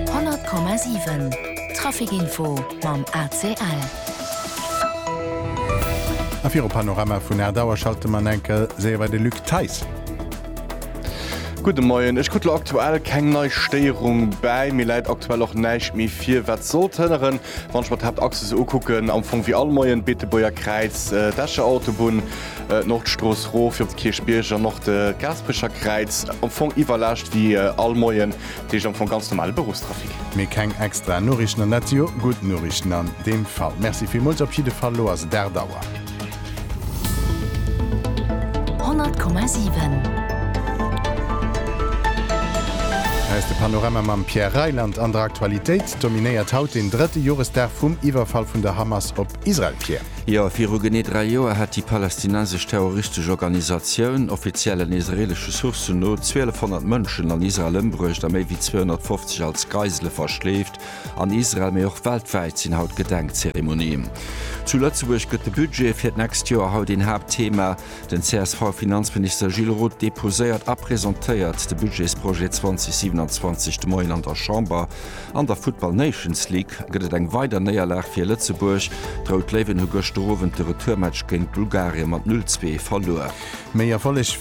100,7 Traficinfo mam ACL. A viru Panorama vun aacht Auer schalte mer en enkel séier bei de Luc Theis. Gudde Moien. Ech krut elo aktuell keng nei Stéierung bäi. Mir läit aktuell och näischt méi vir, wat sollt hënneren, Wann ech mer d'Haaptachse sou ukucken, am Fong wéi all Moien, Beetebuerger Kräiz, d'Escher Autobunn, d'Nordstrooss rof op de Kierchbierg an och de Gaasperecher Kräiz, am Fong iwwerlaascht wéi all Moien, dat heescht am Fong ganz normale Beruffstrafic. Mee keng extra Noriichten an dat si jo gutt Noriichten an deem Fall. Merci villmools op jidde Fall, lo ass et 8 Auer. 100,7. Hei ass de Panorama mam Pierre Reyland an der Aktualitéit. Dominéiert haut den drëtte Joresdag vum Iwwerfall vun der Hamas op Israel, Pierre. Jo, viru genee dräi Joer hat déi palästinensesch terroristesch Organisatioun, offiziellen israeelesche Sourcen no, 1200 Mënschen an Israel ëmbruecht a méi wéi 250 als Geisele verschleeft. An Israel, mee och weltwäit sinn haut Gedenkzeremonien. Zu Lëtzebuerg gëtt de Budget fir d'nächst Joer haut een Haaptthema. Den CSV-Finanzminister Gilles Roth deposéiert a presentéiert de Budgetsprojet 2027 de Moien an der Chamber. An der Futtball Nations League gëtt et eng weider Néierlag fir Lëtzebuerg. D'Rout Léiwen hu gëschter Owend de Retourmatch géint Bulgarien mat 0, 2 verluer. Méi erfollegräich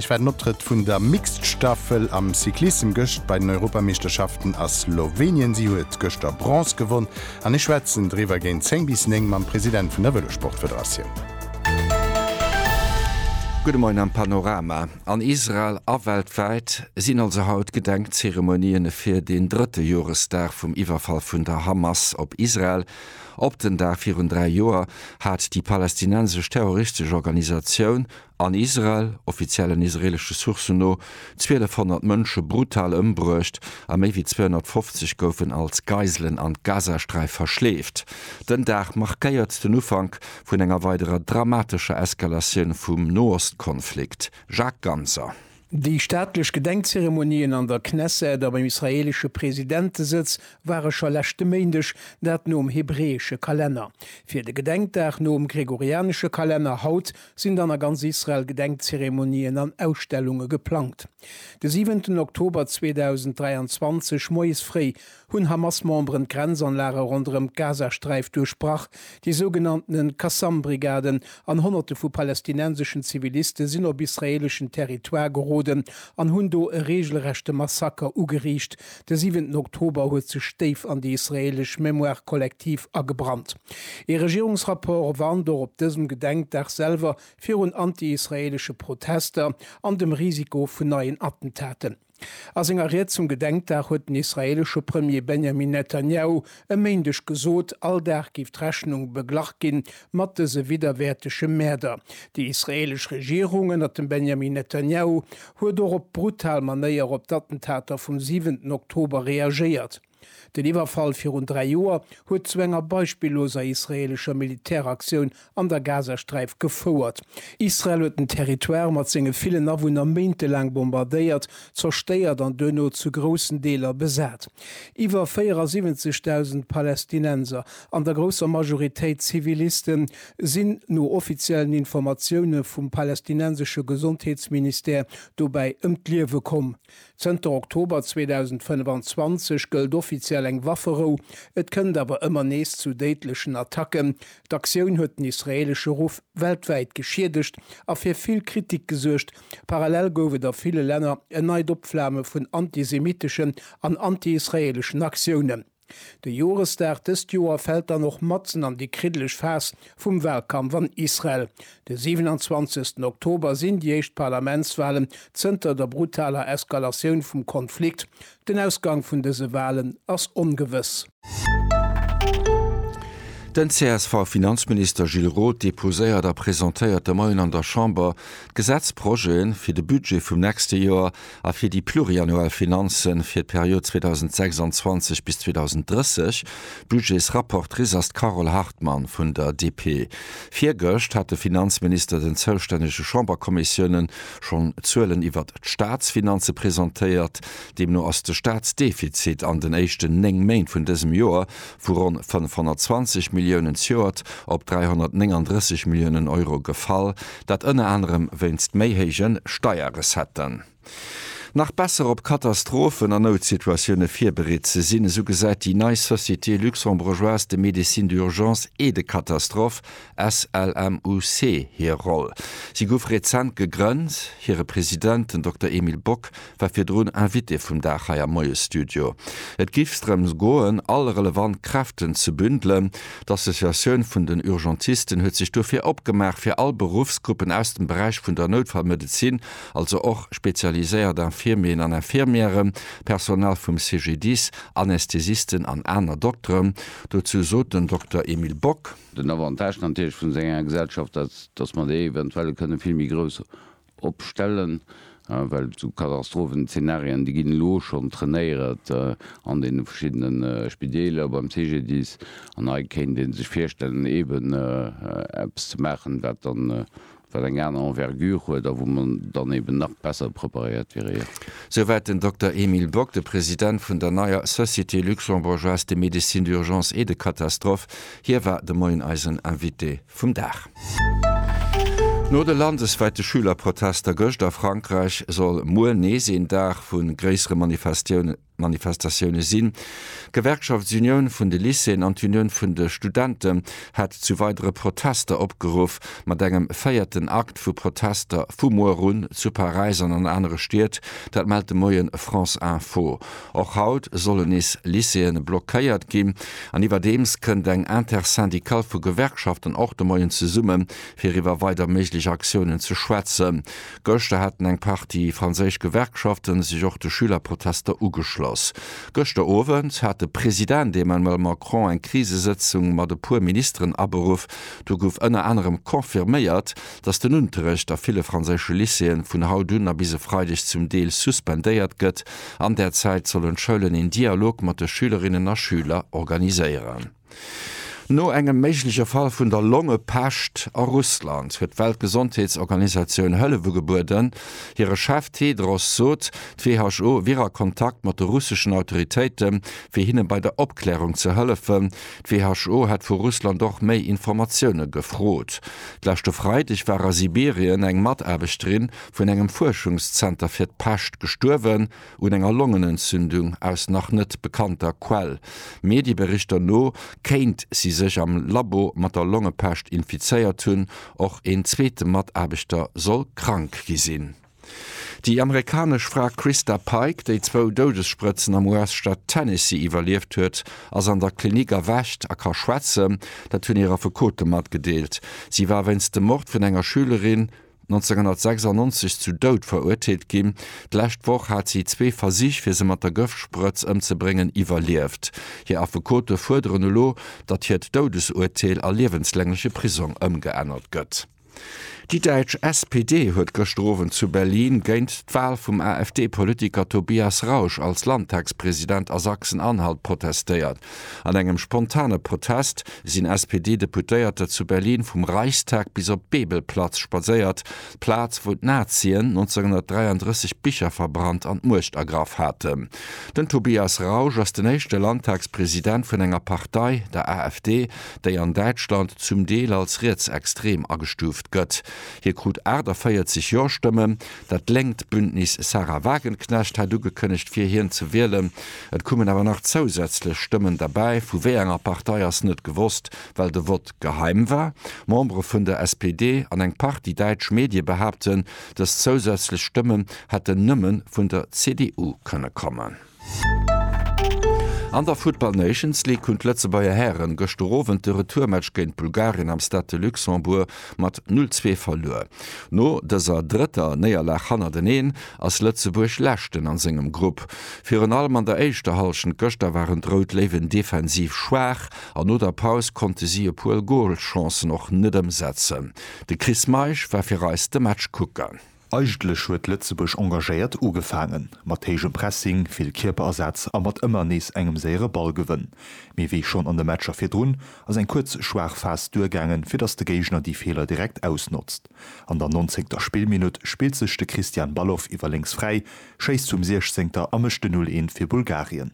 war den Optrëtt vun der Mixed-Staffel am Cyclissem gëscht bei den Europameeschterschaften a Slowenien. Si huet gëschter Bronze gewonn. An ech schwätzen driwwer géint 10 bis 9 mam President vun der Vëlossportfederatioun. Gudde Moien am Panorama. An Israel a weltwäit sinn also haut Gedenkzeremonien fir den drëtte Joresdag vum Iwwerfall vun der Hamas op Israel. Op den Dag virun dräi Joer hat déi palästinensesch terroristesch Organisatioun An Israel, offiziellen israelesche Sourcen no, 1200 Mënsche brutal ëmbruecht a méi wéi 250 goufen als Geiselen an d'Gazasträif verschleeft. Den Dag markéiert den Ufank vun enger weiderer dramatescher Eskalatioun vum Noostkonflikt. Jacques Ganser. Déi staatlech Gedenkzeremonien an der Knesset a beim israeelesche Presidentesëtz ware scho leschte Méindeg, dat nom hebräesche Kalenner. Fir de Gedenkdag nom gregorianesche Kalenner haut sinn dann a ganz Israel Gedenkzeremonien an Ausstellunge geplangt. De siwenten Oktober 2023 moies fréi hunn Hamas-Memberen d'Grenzanlage ronderëm d'Gazasträif duerchbrach. Déi sougenannte Qassam-Brigaden an Honnerte vu palästinenseschen Ziviliste sinn op israeeleschen Territoire geroden an hunn do e reegelrechte Massaker ugeriicht. De siwenten Oktober huet sech déif an déi israeelesch Mémoire collective agebrannt. Ee Regierungsrapport warnt och op dësem Gedenkdag selwer virun anti-israeelesche Protester an dem Risiko vun neien Attentaten. A senger Ried zum Gedenkdag huet den israeelesche Premier Benjamin Netanjahu e Méindeg gesot, all Dag géif d'Rechnung beglach gi mat dëse widderwäertege Mäerder. Déi israeelesch Regierung ënnert dem Benjamin Netanjahu huet och op brutal Manéier op d'Attentater vum siwenten Oktober reagéiert. Den Iwwerfall virun dräi Joer huet zu enger beispilloser israeelescher Militäraktioun an der Gazasträif gefouert. Israel huet den Territoire mat senge villen Awunner méintelaang bombardéiert, zerstéiert an duerno zu groussen Deeler besat. Iwwer 74.000 Palästinenser, an der grousser Majoritéit Zivilisten, sinn no offiziellen Informatioune vum palästinensesche Gesondheetsministère dobäi ëm d'Liewe komm. Zënter Oktober 2025 gëllt offiziell eng Wafferou, et kënnt awer ëmmer nees zu déidlechen Attacken. D'Aktioun huet den israeelesche Ruff weltwäit geschiedegt a fir vill Kritik gesuergt. Parallel gouf et a ville Länner en neit Opflame vun antisemitteschen an anti-israeeleschen Aktiounen. De Joresdag dëst Joer fält dann och matzen an déi kriddeleg Phas vum Walkampf an Israel. De 27 Oktober sinn déi éischt Parlamentswalen zënter der brutaler Eskalatioun vum Konflikt. Den Ausgang vun dëse Walen ass ongewëss. Den CSV-Finanzminister Gilles Roth deposéiert a presentéiert de Moien an der Chamber d'Gesetzprojete fir de Budget vum nächste Joer. a fir déi pluriannuell Finanze fir d'Period 2026 bis 2030, Budgetsrapportrice ass d'Carole Hartmann vun der DP. Virgëscht hat de Finanzminister den zoustännege Chamberkommissiounen schonn Zuelen iwwert d'Staatsfinanze presentéiert. Deemno ass de Staatsdefizit an den éischten néng Méint vun dësem Joer vu ronn 520 Milliounen zejoert op 339 Milliounen Euro gefall, dat ënner anerem wéinst méi héije Steierrecetten. Nach besser op Katastrophen a Noutsituatioune virbereet ze sinn, esou gesäit déi nei Société luxembourgeoise de médecine d'urgence et de catastrophe, SLMUC, hir Roll. Si gouf rezent gegrënnt. Hire President, den Dokter Emile Bock, war virdrun Invitée vum Dag hei am Moiesstudio. Et géif sdrëms goen, all relevant Kräften ze bündelen. D'Associatioun vun den Urgentisten huet sech dofir opgemaach, fir all Beruffsgruppen aus dem Beräich vun der Noutfallmedezin, also och spezialiséiert Infirmieren an Infirmièren, Personal vum CGDIS, Anästhesisten an aner Dokteren, dozou sot den Dokter Emile Bock. Den Avantage natierlech vun esou enger Gesellschaft ass, dass mer déi eventuell kënne vill méi grouss opstellen, well sou Katastrophenzeenarien, déi ginn elo schonn trainéiert an deene verschiddene Spideeler, beim CGDIS, an hei kéint ee sech virstellen, eeben eppes ze maachen, wat dann, wat eng aner Envergure huet a wou mer dann eeben nach besser preparéiert wieren. Souwäit den Dokter Emile Bock, de President vun der neier Société luxembourgeoise de médecine d'urgence et de catastrophe. Hie war de Moien eisen Invité. vum Dag. No de landeswäite Schülerprotester gëscht a Frankräich soll muer nees een Dag vu gréissere Manifestatioune sinn. D'Gewerkschaftsunioun vun de Lycéeën an d'Unioun vun de Studente hat zu weidere Protester opgeruff, mat engem véierten Akt vu Protester vu muer un zu Paräis an an anere Stied. Dat mellt de Moien France Info. Och haut sollen nees Lycéeën blockéiert ginn an iwwerdeems kënnt eng Intersyndicale vu Gewerkschaften och de Moien zesumme fir iwwer weider méiglech Aktiounen ze schwätzen. Gëschter haten eng Partie franséisch Gewerkschafte sech och de Schülerprotester ugeschloss. Gëschter Owend hat de President Emmanuel Macron eng Krisesëtzung mat e puer Ministeren aberuff. Do gouf ënner anerem confirméiert, datt den Unterrecht a ville franséische Lycéeën vun haut un a bis e Freideg zum Deel suspendéiert gëtt An där Zäit sollen d'Schoulen een Dialog mat de Schülerinnen a Schüler organiséieren. No engem méigleche Fall vun der Longepescht a Russland huet d'Weltgesondheetsorganisatioun Hëllef ugebueden. Hire Chef Tedros sot, d'WHO wier a Kontakt mat de russeschen Autoritéite fir hinne bei der Opklärung ze hëllefen. D'WHO hätt vu Russland och méi Informatioune gefrot. D'leschte Freideg war a Sibirien eng Mataarbechterin vun engem Fuerschungszenter fir d'Pescht gestuerwen, un enger Longenentzündung, aus nach net bekannter Quell. Medieberichter no kéint si sech am Labo mat der Longepescht infizéiert hunn, och een zweete Mataarbechter soll krank gi sinn. Déi amerikanesch Fra Christa Pike, déi zwou Doudessprëtzen am US-Staat Tennessee iwwerlieft huet, ass an der Klinik erwächt a ka schwätzen. Dat hunn hir Affekote matgedeelt. Si war wéinst dem Mord vun enger Schülerin 1996 zu Doud verurteelt ginn. D'lescht Woch hat si zwee Versich, fir se mat der Gëftsprëtz ëmzebréngen, iwwerlieft. Hir Affekote fuerderen elo, datt hiert Doudesurteel a liewenslängleche Prisong ëmgeännert gëtt. Déi däitsch SPD huet gëschter Owend zu Berlin géint d'Wal vum AfD-Politiker Tobias Rausch als Landtagspresident a Sachsen-Anhalt protestéiert. An engem spontane Protest sinn SPD-Deputéierter zu Berlin vum Reichstag bis op d'Bebelplatz spadséiert, d'Plaz, wou d'Nazien 1933 d'Bicher verbrannt an d'Muecht ergraff haten. Den Tobias Rausch ass den éischte Landtagspresident vun enger Partei, der AfD, déi an Däitschland zum Deel als rietsextrem agestuuft gëtt. Hie krut 48 Jo-Stëmmen, Dat lénkt Bündnis Sahra Wagenknecht hat ugekënnegt fir hien ze wielen. Et kummen awer nach zousätzlech Stëmmen derbäi, vu wéi enger Partei ass net gewosst, well de Vott geheim war. Membere vun der SPD an eng Partie däitsch Medie behaapten, dës zousätzlech Stëmmen hätten nëmme vun der CDU kënne kommen. An der Futtball Nations League hunn d'Lëtzebuerger Hären gëschter Owend de Retourmatch géint Bulgarien am Stade de Luxembourg mat 0, 2 verluer. No dëser drëtter Néierlag hannerteneen ass Lëtzebuerg Leschten a sengem Grupp. Virun allem an der éischter Hallschent gëschter waren d'Rout Léiwen defensiv schwaach an no der Paus konnte si e puer Golchancen och net ëmsetzen. De Chris Meisch war fir eis de Match kucken. Eigentlech huet Lëtzebuerg engagéiert ugefaangen, mat héijem Pressing, vill Kierperersatz a mat ëmmer nees engem séiere Ballgewënn. Mee wéi schonn an de Matcher virdrun, ass eng kuerz schwaach Phas duergaangen, fir datt de Géigner déi Feeler direkt ausnotzt. An der nonzéngter Spillminutt spillt sech de Christian Balogh iwwer lénks fräi, schéisst vum Siechzéngter a mécht de 'Null Eent' fir Bulgarien.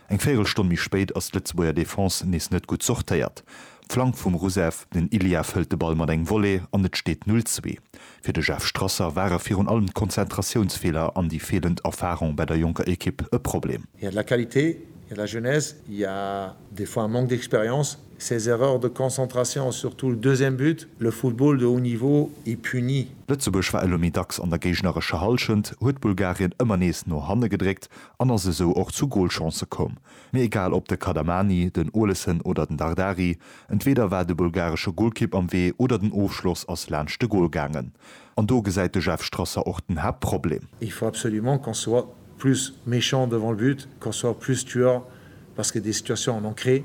Eng Véierelstonn méi spéit ass d'Lëtzebuerger Defense nees net gutt sortéiert. Flank vum Rousseff, den Illief hëlt de Ball mat engem Volley an et steet 0, 2. Fir de Jeff Strasser ware virun allem d'Konzentratiounsfeeler an déi feelend Erfarung bei der jonker Ekipp e Problem. Il y a de la qualité, il y a de la jeunesse, il y a des fois un manque d'expérience. Ces erreurs de concentration, surtout le deuxième but, le football de haut niveau est puni. Lëtzebuerg war elo méi dacks an der géignerescher Hallschent, huet Bulgarien ëmmer nees no hanne gedréckt an ass esou och zu Golchancë komm. Mee egal op de Kadamani, den Olesen oder den Dardari, entweeder war de bulgaresche Golkipp am Wee oder den Ofschloss ass laanscht de Gol gaangen. An do gesäit de Jeff Strasser och den Haaptproblem. Il faut absolument qu'on soit plus méchant devant le but, qu'on soit plus tueur parce que des situations on en crée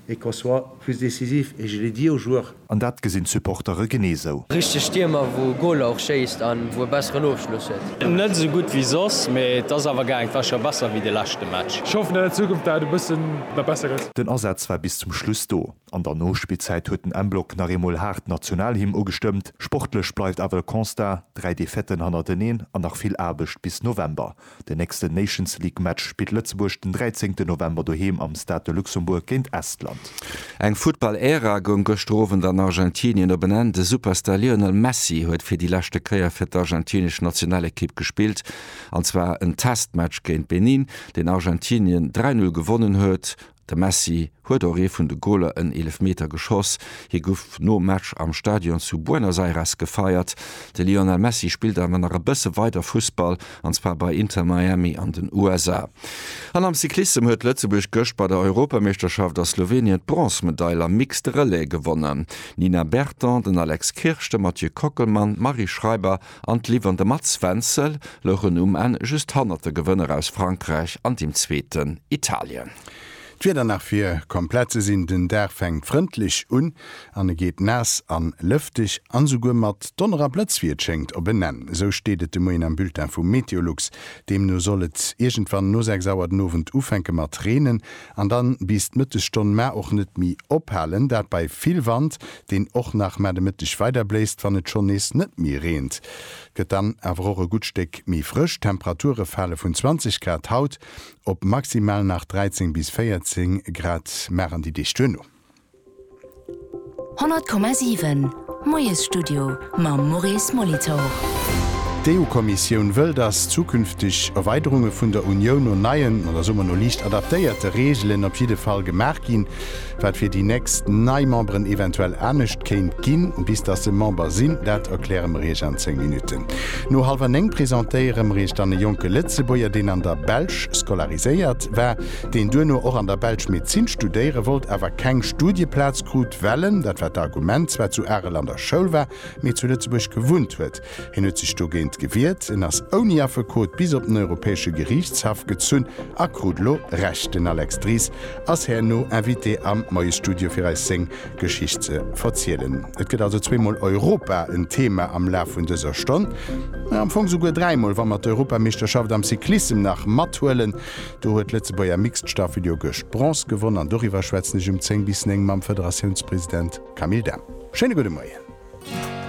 et qu'on soit plus décisif et je l'ai dit aux joueurs. An dat gesinn d'Supportere genee esou. Richteg Stiermer wou Goaler och schéisst an wou e besseren Ofschloss huet. Net esou gudd wéi soss, mee et ass awer gaang. War schon besser wéi de leschten Match. Ech hoffen dat an Zukunft dat e bëssen nach besser gëtt. Den Asaz war bis zum Schluss do. An der Nospillzäit huet den M-Block nach eemol haart d'Nationalhymn ugestëmmt. Sportlech bleift awer de Constat, 3 Defaitë hannerteneen an nach vill Aarbecht bis November. Den nächsten Nations League Match spillt Lëtzebuerg den 13 November doheem am Stade de Luxembourg géint Estland. Eng Futtball-Ära goung gëschter Owend an Argentinien op en Enn. De Superstar Lionel Messi huet fir déi leschte Kéier fir d'argentinesch Nationalekipp gespillt, an zwar en Testmatch géint Benin, deen Argentinien 3, 0 gewonnen huet. De Messi huet och ee vun de Goler en Eelefmeter geschoss. Hie gouf nom Match am Stadion zu Buenos Aires gefeiert. De Lionel Messi spillt awer nach e bësse weider Fussball, an zwar bei Inter Miami an den USA. An am Cyclissem huet Lëtzebuerg gëscht bei der Europameeschterschaft a Slowenien d'Bronzmedail am Mixed Relais gewonnen. D'Nina Berton, den Alex Kirsch, de Mathieu Kockelmann, d'Marie Schreiber an d'Liv an de Mats Wenzel louchen um Enn just hannert de Gewënner aus Frankräich an dem Zweeten, Italien. D'Wieder nach fir komplett ze sinn, den Dag fänkt frëndlech un an e geet naass an lëfteg an esouguer mat Donner a Blëtz wéi et schéngt op en Enn. Esou steet et de Moien am Bulletin vu Meteolux. Deemno soll et iergendwann no 6 Auer den Owend ufänke mat reenen An dann bis d'Mëttesstonn mä och net méi ophalen, dat bei vill Wand, deen och nach mä de Mëtteg weider bléist. Wann et schonn nees net méi reent, gëtt dann awer och e gutt Stéck méi frësch. D'Temperature fale vun 20 Grad haut op maximal nach 13 bis 14 Grad, mä an déi Deeg duerno. 100,7 Moiesstudio mam Maurice Molitor. D'EU-Kommissioun wëll, datt zukünfteg Erweiderunge vun der Unioun no neien, oder soe mer no liicht adaptéierte Reegelen op jidde Fall gemaach ginn. Wat fir déi nächst nei Memberen eventuell anescht kéint ginn, bis datt se Member sinn, dat erkläre mer Iech an 10 Minutten. No hallwer 9 presentéiere mer Iech dann e jonke Lëtzebuerger, deen an der Belsch scolariséiert war. deen duerno och an der Belsch Medezin studéiere wollt, awer keng Studieplaz krut, well en, dat war d'Argument, zwar zu Arel an der Schoul war, mee zu Lëtzebuerg gewunnt huet. Hien huet sech dogéint gewiert, en ass ouni Affekot bis op den Europäesche Geriichtshaff gezunn a krut elo Recht. Den Alex Dries ass herno Invité am Moiesstudio fir eis seng Geschicht ze verzielen. Et gëtt also zweemol Europa en Thema am Laf vun dëser Stonn. Am Fong souguer dräimol, wa mer d'Europameeschterschaft am Cyclissem nach mathuelen. Do huet d'Lëtzebuerger Mixed Staffelduo gëscht Bronze gewonn an doriwwer schwätzen ech um 10 bis 9 mam Federatiounspresident Camille Dahm. Schéine gudde Moien.